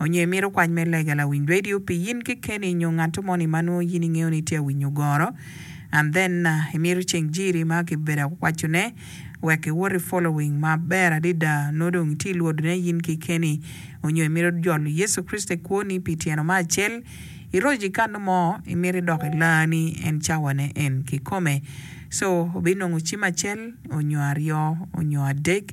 onyo imito kwany me lega lawiny radio pi in kekeni nyo ngato moni ma nwo in ingeyo ni tye awinyo goro and then imito ceng jiri ma kibedo akwaco ne wek iwot i following ma ber adida nwo dong itye ilwodo ne in kekeni onyo imito jolo Yecu Kricito i kwoni pi tyeno ma acel iroco i kano mo imito idok i laa ni en cawa ne en kikome so obinongo cim acel onyo aryo onyo adek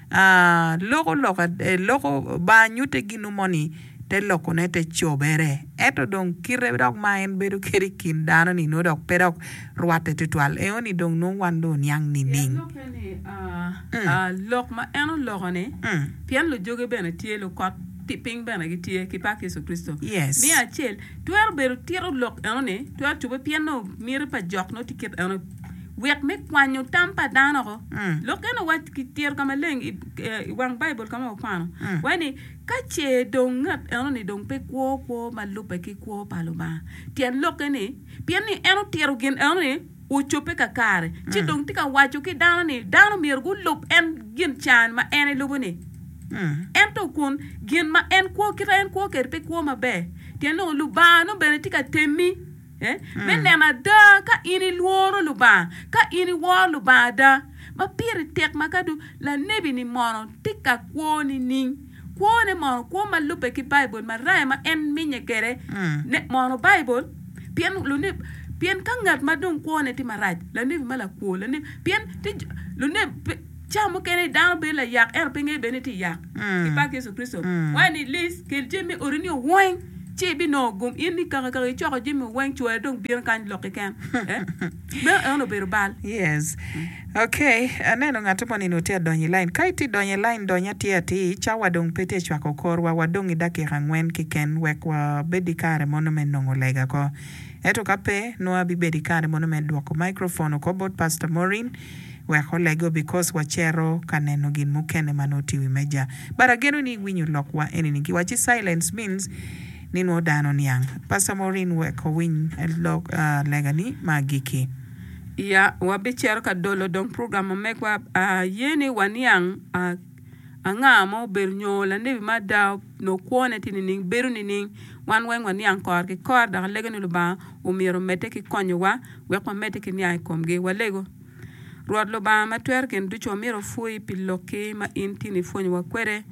loko loka, loko, ba nyutte ginwu mo ni te lokone te cobere, ento dong kite dok ma en bedo kede i kin dano ni nongo dok pe dok rwatte twatwal, eo ni dong nongo wan dong oniang nining? Lokke ni lok ma en oloko ni, pien lujoge bene tye lukot pi piny bene gitye ki pak Yecu Kricito. Miya acel, twero bedo tito lok eno ni twero cobbe pien nongo miti pa jok nongo tye kit eno. wek me kwanyo tam pa dano oko. Mm. Lok kene wa kitiro ka maleng i, eh, i wang Baibul ka ma wakwano Mm. waye ni ka ce dong ngat eno-ni dong pe kwo kwo ma lubbe ki kwo pa Lubanga, tyen lokke ni pien ni en otiro gin eno-ni ocobbe kakare, ci Mm. dong tye ka waco ki dano ni dano myero gulub en gin can ma en elubo-ni. Mm. Ento kun gin ma en kwo, kite en kwo kwede pe kwo maber, tyen lok ni Lubanga nongo bene tye ka temmi me neno ada ka in ilworo Lubanga, ka in iworo Lubanga ada, ma pire tek ma ka dong lanebi-ni mono tye ka kwo nining? Kwone mono kwo ma lubbe ki Baibul maraya ma en minye kwede mono Baibul? Pien luneb pien ka ngat ma dong kwone tye marac, lanebi ma lakwo, lanebi, pien tye luneb, Cawa mukene dano bedo layak ento pe ngeyo bene ni tye yak. I pak Yecu Kricito, waneno ni Liz, kel jami me odi ni oweng, ci ibinongo gum in ni kaka kaka icoko jami oweng, cwari dong bino kany lok keken. Eh, Meno en obedo bal. Yes. Okay, aneno ngat mo nino tye adonyo i lain. Ka itye idonyo i lain, dony atir atir. Cawa dong pe tye cwako korwa, wadong i dakika angwen keken wek wabed ki kare mono me nongo lega ko. Ento ka pe, nongo abibedo ki kare mono me dwoko microphone oko bot Pastor Maureen. Wek oleg obikos wacero ka neno gin mukene ma nongo tye i wi meja. But ageno ni iwinyo lokwa enini giwaci silence means ni nongo dano oniang. Pastor Maureen wek owiny lok lega ni ma agikki. Ya wabicero ka dolo dong program ma megwa. Aye ni waniang. Anga ma obedo nyo lanebi ma ada nongo kwone tye nining? Bedo nining? Wan weng waniang kore ki kore dok alego ni Lubanga omyero omedde ki konyowa wek wamedde ki niang i komgi. Walego, Rwot Lubanga ma Twero Gin Ducu myero opwony pi lokki ma in tin ipwonyowa kwede.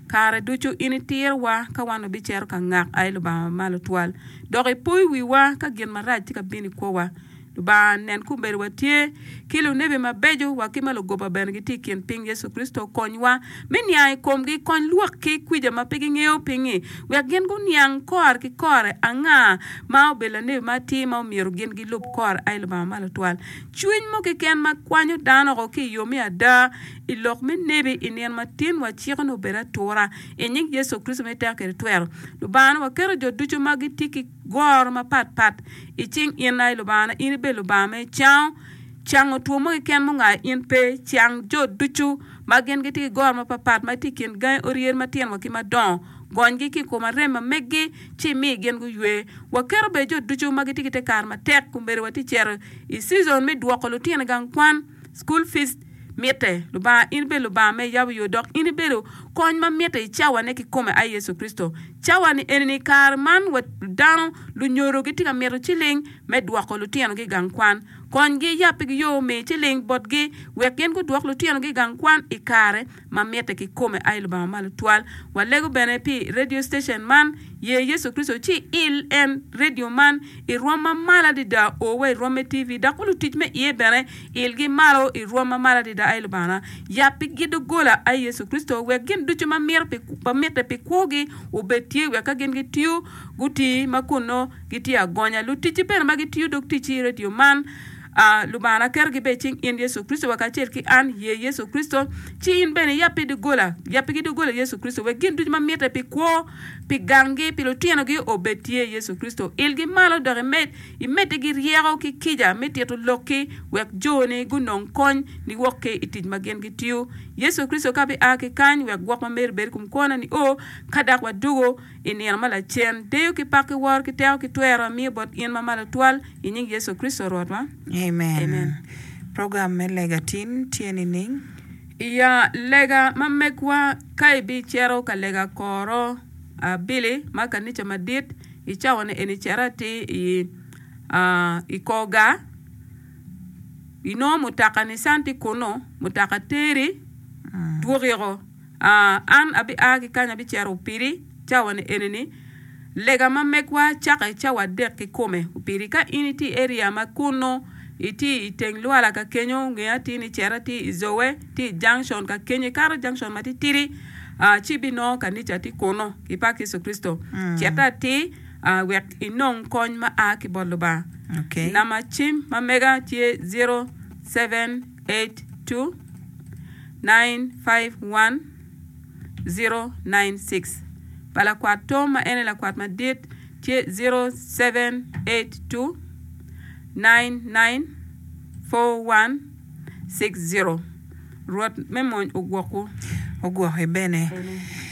Kare ducu in itirowa ka wan wabicito ka ngak aye Lubanga ma Malo Twal, dok ipoyo wiwa ka gin marac tye ka bino i kwowa. Lubanga, nen kun bed watye ki lunebi mabeco wa ki ma lugoba bene gitye i kin piny Yecu Kricito. Konywa me niang i komgi. Kony lwak ki kwica ma pe gingeyo pingi, wek gin guniang kore ki kore anga ma obedo lanebi ma atir ma omyero gin gilub kore. Ai Lubanga ma Lutwal Cwiny mo keken ma kwanyo dano woko ki i yo me ada i lok me nebi i nino matin, waciko ni obed atura. I nying Yecu Kricito ma iteka kede twero, Lubanga, waketo jo ducu ma gitye ki. Goro mapat pat i cing in aye Lubangana, in ibedo Lubanga ma icango. Cango two mo keken ma ongayo in pe. Cang jo ducu ma gin gitye ki goro mapat pat ma tye i kin gangi oryer matino wa ki madongo. Gonygi ki i kom arem ma meggi ci imi gin guywe. Waketo bene jo ducu ma gitye ki te kare matek. Kombeddi watye cito i cizon me dwoko lutino i gang kwan, school fees, Mitte, Lubanga, in ibed Lubanga ma iyabo yo dok in ibedo kony ma mitte i cawane kikome aye Yecu Kricito. Cawani enini i kare man wa dano lunyodo gitye ka mito ciling me dwoko lutino gi i gang kwan. Konygi, yappigi yo, mi ciling botgi wek gin gudwok lutino gi i gang kwan i kare ma mitte kikome aye Lubanga malo twal. Walego bene pi radio station man, Ye Yecu Kricito ci il en, radio man, i rwom ma malo adada o wa i rwom me TV, dok wa lutic me iye bene ilgi malo i rwom ma malo adada aye Lubanga. Yap pi gi dogola aye Yecu Kricito wek gin ducu ma mito pi, ma mitte pi kwo gi obed tye wek ka gin gitiyo guti ma kunno gitye agonya. Luticci bene ma gitiyo dog ticci i radio man, A Lubanga na keto gibe i cing in Yecu Kricito wa kacel ki an ye Yecu Kricito, ci in bene iyab pi doggola, yab pigi doggola Yecu Kricito, wek gin ducu ma mitte pi kwo, pi ganggi, pi lutinogi obed tye Yecu Kricito. Ilgi malo dok imed, imeddigi ryeko ki kica me tito lokki wek jo-ni gunong kony niwok ki i tic ma gin gitiyo. Yecu Kricito ka bi a ki kany wek gwok ma meri bed i kom kwo-na nio, ka dak wadwogo, I nino ma lacen, deyo ki pak ki woro ki teko ki twero amiyo bot in ma malo twal, i nying Yecu Kricito Rwotwa. Amen. Program me lega tin tye nining? I ya lega ma megwa. Ka ibicito ka lega koro abili ma kanica madit i cawone eni cito atir i i kor gar, inongo mutoka Nissan tye kunu, mutoka teri dwoki oko. An abia ki kany abicito piri cawa-ni eni-ni. Lega ma megwa cake cawa adek kikome piri. Ka in itye i area ma kunnu, itye i teng lwala ka kenyo, nge atir ni cito atye i Zoe, tye i junction ka kenyo, ikato junction matitidi, ci ibinongo kanica tye kunnu. Pi pak Yecu Kricito. Cite atir wek inong kony ma a ki bot Lubanga. Namba cim ma mega tye zero seven eight two. 951-096 pa lakwat Tom ma en aye lakwat madit tye 0782-994160. Rwot me mony ogwokwu. Ogwokke bene.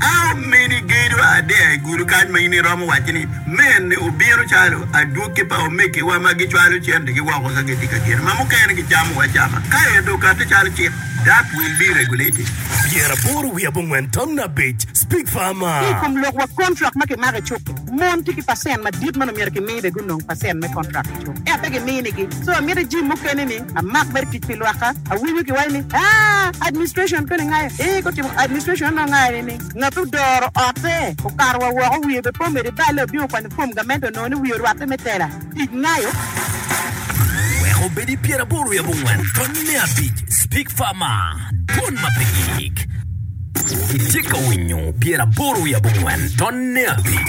A Omeni gedo adea i gudo kany ma in iromo wacci ni, 'Mene obino calo adwogi pa omegiwa ma gicwalo centigi woko ka gitye ka geno ma mukene gicamo acama, ka ento okatte calo cik, that will be regulated. Pyera aboro wiye abongwen tam nab abic, Speak farmer. Ki i kom lok wa kontrak ma kimako i cuk-ki, mon tye ki pacent madit ma onongo myero kimi bene gunong pacent me kontrak. Ento pe giminigi. So amito i jim mukene ni amak mere tic pi lwakka. Awinyo ki waco ni aah administration koni ngayo eeh gutimo administration anongo ngayo ni ni ngat odoro ote okato wa woko wiye be po medo ibale obino kwanyo form gamente onongo ni wiye orwatte me tela tic ngayo. Wek obed i pyeraboro i abongwen tony me abic Speak Farmer Dwon ma pe giyik. Itye ka winyo pyeraboro i abongwen tony me abic.